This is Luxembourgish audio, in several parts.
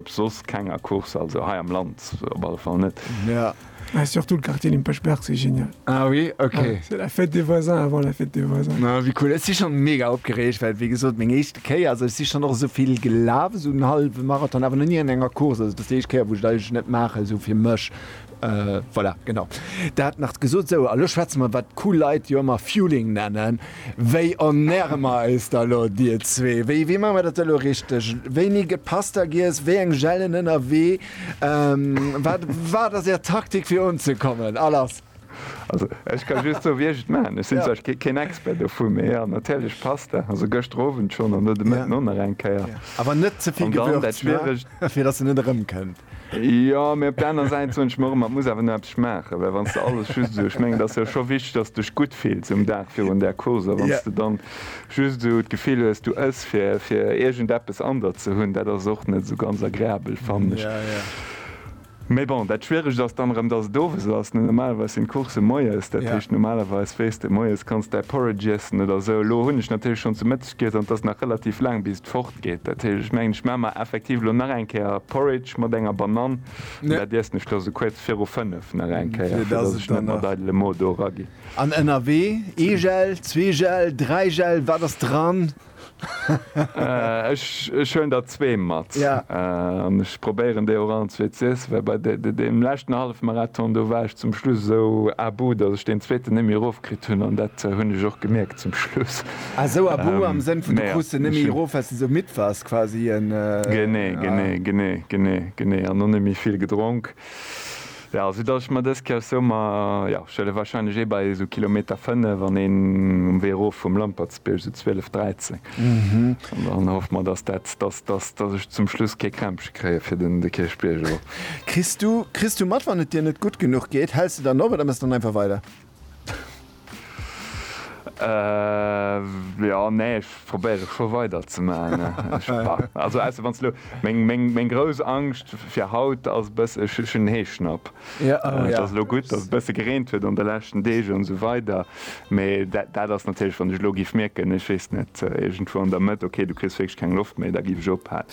Soss keng Accourse, also hei am Land op alle Fall net. Ah, surtout le quartier dem Pechberg, c'est génial! Ah oui, ok. C'est la fête des voisins avant la fête des voisins. Ah wéi cool, ech si schonn mega opgereegt, well wéi gesot meng éischte Kéier, also ech si schonn och esou vill gelaf, esou en hallwe Marathon, awer nach ni an enger Course, also et ass déi éischt Kéier wou ech et eigentlech net maachen, esou fir mech, Voilà, genau dat nach gesot. Sou, a lo schwätze mer, wat cool Leit jo ëmmer Fueling nennen. Wéi ernäre mer eis da lo, Dir zwee? Wéi, wéi maache mer dat da lo richteg? Wéini gëtt Pasta giess? Wéi eng Gelen ënnerwee? Wat, wat ass Är Taktik fir unzekommen? A lass! Also, ech ka just soen, wéi ech et maachen. Ech sinn zwar keen Expert dovu, mee jo, natierlech Pasta, also gëschter Owend schonn an lo de Mëtten och nach eng Kéier. Awer net ze vill Gewürz, ne? Fir dass se net erëmkënnt. Jo, mee op der aner Säit soen ech mer ëmmer, et muss awer nach eppes schmaachen, well wann s de alles just esou, ech mengen, et ass jo scho wichteg, dass s de dech gutt fills um Dag virun där Course. A wann s de dann just esou d'Gefill hues, du ëss, fir, fir iergendeppes an der ze hunn, dat ass och net esou ganz agreabel, fannen ech. Mee bon, dat Schwieregt ass dann erëm, dass et owes ass, ne? Normalerweis sinn d'Coursse moies, dat heescht, normalerweis weess de, moies kanns de däi Porridge iessen oder esou. Elo hunn ech natierlech schonn zu Geet an et ass nach relativ laang bis et fort geet. Dat heescht ech mengen ech maan mer effektiv elo nach eng Kéier Porridge mat enger Banann an dat iessen ech da sou kuerz viru 5 nach eng Kéier fir dass ech net mat eidele Mo do era ginn. An ënnerwee ee Gel, zwee Gel, dräi Gel, wat ass dran? Ech huelen der zwee mat an ech probéieren déi och allenzwee ze iessen, well bei deem leschten Hallefmarathon do war ech zum Schluss esou à bout, dass ech deen zweeten net méi erof kritt hunn an dat hunn ech och gemierkt zum Schluss. Ah sou a bou am Sënn vun du krus se nemmi erof wells de sou midd wars quasi en Genee genee genee genee genee an och nemmi vill gedronk ja sou dass ech mer dës Kéier sou mer ja ech wëlle wahrscheinlech eh bei sou Kilometer 5 an een um Wee erof vum Lampertsbierg sou 12 13 an dann hoff mer dass dat dass dass dass ech zum Schluss kee Krämpche kréie fir den de Kierchbierg erof. Kriss du kriss du mat wann et dir net gutt genuch geet? Häls de dann op oder mëss dann einfach weider? Ehh jo nee ech probéiere scho weider ze man also ausser wanns elo meng meng meng grouss Angscht fir haut ass bëss ech ech hunn Heeschnapp et ass elo gutt dass et bësse gereent huet an de leschten Deeg an esou weider mee dat dat ass natierlech wann ech elo giff mierken ech weess net iergendwou an der Mëtt ok du kriss wierklech keng Loft méi da giff ech ophalen.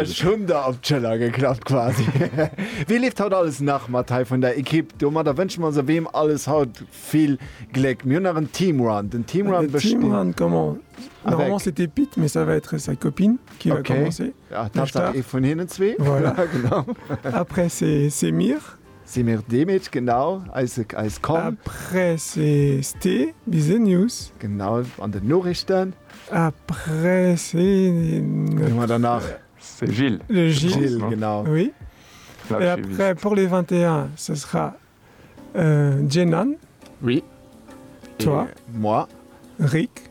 Ech hunn der op d'Schëller geklappt quasi. Wee leeft haut alles nach mat hei vun der Equipe? Domadder wënschen mer se weem alles haut vill Gléck. Mir hunn nach en Teamrun. Den Teamrun besteet. Normalement c'est de Pit, mais ça va être sa copine qui va commencer. Tatsaach ee vun hinnen zwee. Voilà, genau. Après c'est mir. Si mir dee Meech genau, eise, eis komm. Après CST, bis en News. Genau, an den Norichten. Après C. Wien hu mer dann nach? De Gilles. De Gilles, genau. Oui. Et après pour les 21, ce sera Djenan. Oui. Toi. Et moi. Rik.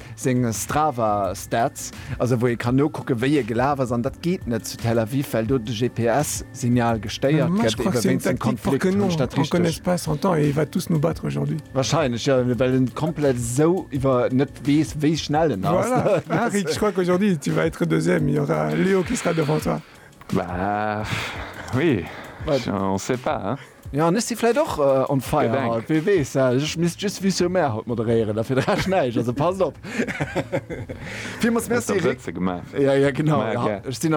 seng Strava Stats, also wou ee kann nokucken wéi ee gelaf ass, an dat geet net zu Tel Aviv, well do de GPS Signal gestéiert gëtt ebe wéinst engem Konflikt, hunn ech dat richteg? Wahrscheinlech jo, well en komplett esou iwwer net weess wéi schnell en ass. Bah, oui, on sait pas, hein. Jo, an ech si vläit och on fire haut, wee weess. Ech misst just Vue sur Mer haut moderéieren, a fir de Rescht näischt. Also passt op. Villmools Merci Eric. Hues der Wëtze gemaach? Jo, jo, genau. Ech sinn am.